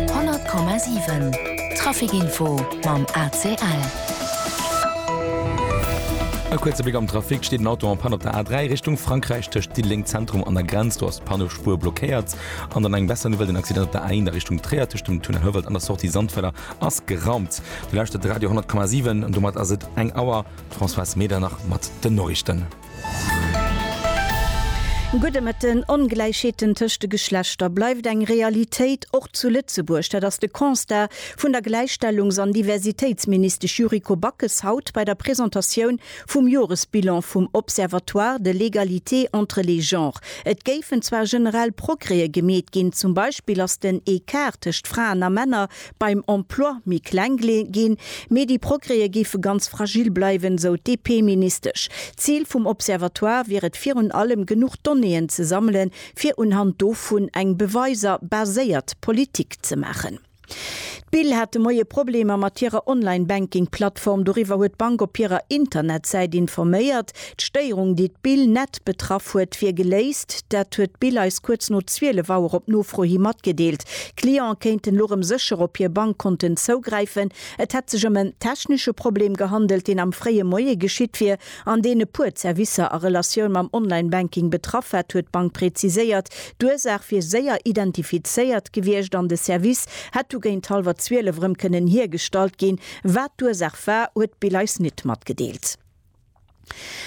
100,7 Trafic Info mam ACL. E kuerze Bléck am Trafic, Et steet en Auto en Panne op der A3 Richtung Frankräich, tëscht Diddeleng Zentrum an der Grenz. Do ass d'Pannespuer blockéiert. An dann eng besser Nouvelle, Den Accident op der A1 a Richtung Tréier tëscht dem Tunnel Houwald an der Sortie Sandfeller ass geraumt. Dir lauschtert Radio 10,7 an domat ass et eng Auer. D'Françoise Medernach mat den Noriichten. Gudde Mëtten, Ongläichheeten tëscht de Geschlechter bleift eng Realitéit, och zu Lëtzebuerg. Dat ass de Constat vun der Gläichstellungs an Diversitéitsministesch Yuriko Backes haut bei der Presentatioun vum Joresbilan vum Observatoire de l'égalité entre les genres. Et géifen zwar generell Progrèe gemeet ginn, zum Beispill ass den Ecart tëscht Fraen a Männer beim Emploi méi kleng ginn, mee déi Progrèse géife ganz fragil bleiwen, esou d'DP-Ministesch. D'Zil vum Observatoire wier et virun allem, genuch Donnéeën ze sammelen, fir unhand dovun eng beweiser baséiert Politik ze maachen. D'Bill hat de Moie Problemer mat hirer Online-Banking-Plattform. Doriwwer huet d'Bank op hirer Internetsäit informéiert. D'Stéierung, déi d'Bill net betraff huet, wier geléist. Dat huet d'Bill eis kuerz no 12 Auer op Nofro hi matgedeelt. D'Cliente kéinten elo rëm sécher op hir Bankkonten zougräifen. Et hätt sech ëm en technesche Problem gehandelt, deen am fréie Moie geschitt wier an deen e puer Zerwisser a Relatioun mam Online-Banking betraff hätt, huet d'Bank präziséiert. D'Ursaach wier séier identifizéiert gewiescht an de Service hätt du géint hallwer 12 erëm kënnen hiergestallt ginn. Wat d'Ursaach war, huet d'Bill eis nit matgedeelt.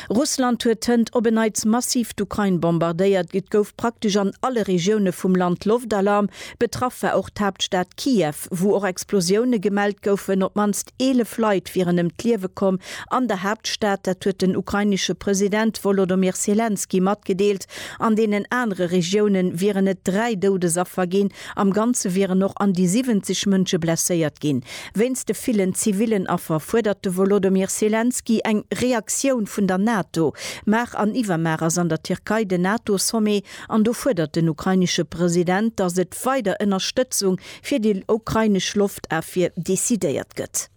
Russland huet hënt op en Neits massiv d'Ukrain bombardéiert. Et gouf praktesch an alle Regioune vum Land Loftalarm. Betraff war och d'Haaptstad Kiew, wou och Explosioune gemellt goufen. Op d'mannst 11 Leit wieren ëm d'Liewe komm an der Haaptstad. Dat huet den ukrainesche President Wolodomir Selenskyj matgedeelt. An deenen anere Regioune wieren et dräi Doudesaffer ginn. Am Ganze wieren och an déi 70 Mënsche blesséiert ginn. Wéinst de villen zivillen Affer fuerdert de Wolodymyr Selenskyj eng Reaktioun vun der NATO. Mar an iwwermar ass an der Tierkei den NATO-Sommet an do fuerdert den ukrainesche President, datt et weider Ënnerstëtzung fir déi ukrainesch Loftafwier decidéiert gëtt.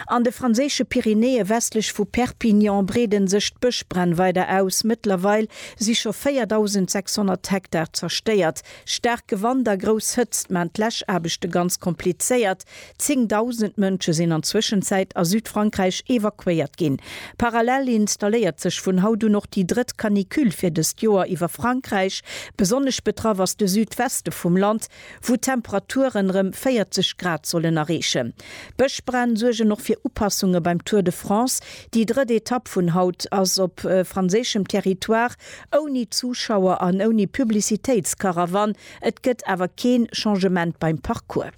An de franséische Pyrenäe westlech vu Perpignan breede sech d'Bëschbränn weider aus. Mëttlerweil si scho 4.600 Hektar zerstéiert. Staark Gewand a grouss Hëtzt maachen d'Läschaarbechte ganz komplizéiert. Zéngdausend Mënsche sinn an Zwëschenzäit a Südfrankräich evakuéiert ginn. Parallel installéiert sech vun haut un och déi drëtt Canicule fir dëst Joer iwwer Frankräich. Besonnesch betraff ass de Südweste vum Land. wou d'Temperaturen rem 40 Grad sollen erreechen. D'Bëschbränn suergen och fir Upassunge beim Tour de France. Déi drëtt Etapp vun haut ass op franséischem Territoire, ouni Zuschauer an ouni Publicitéitskarawann. Et gëtt awer keen Changement beim Parcours.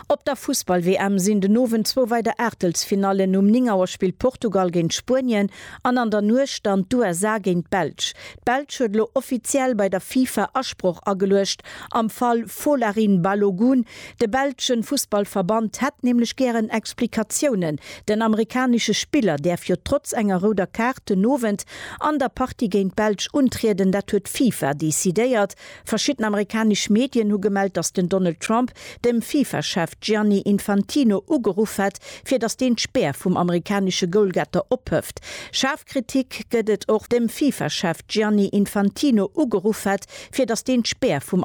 Op der Fussball-WM sinn den Owend zwou weider Aachtelsfinallen, um 9 Auer spillt Portugal géint Spuenien an an der Nuecht dann d'USA géint d'Belsch. D'Belsch huet elo offiziell bei der FIFA Asproch ageluecht am Fall Folarin Balogun. De belsche Fussballverband hätt nämlech gären Explikatiounen. Den amerikanesche Spiller däerf jo trotz enger rouder Kaart den Owend an der Partie géint d'Belsch untrieden, dat huet d'FIFA decidéiert. Verschidden amerikanesch Medien hu gemellt, datt den Donald Trump dem Fifa-Chef Gianni Infantino ugeruff hätt, fir datt deen d'Spär vum amerikanesche Goalgetter ophëft. Schaarf Kritik gëtt et och dem Fifa-Chef Gianni Infantino ugeruff hätt, fir datt deen d'Spär vum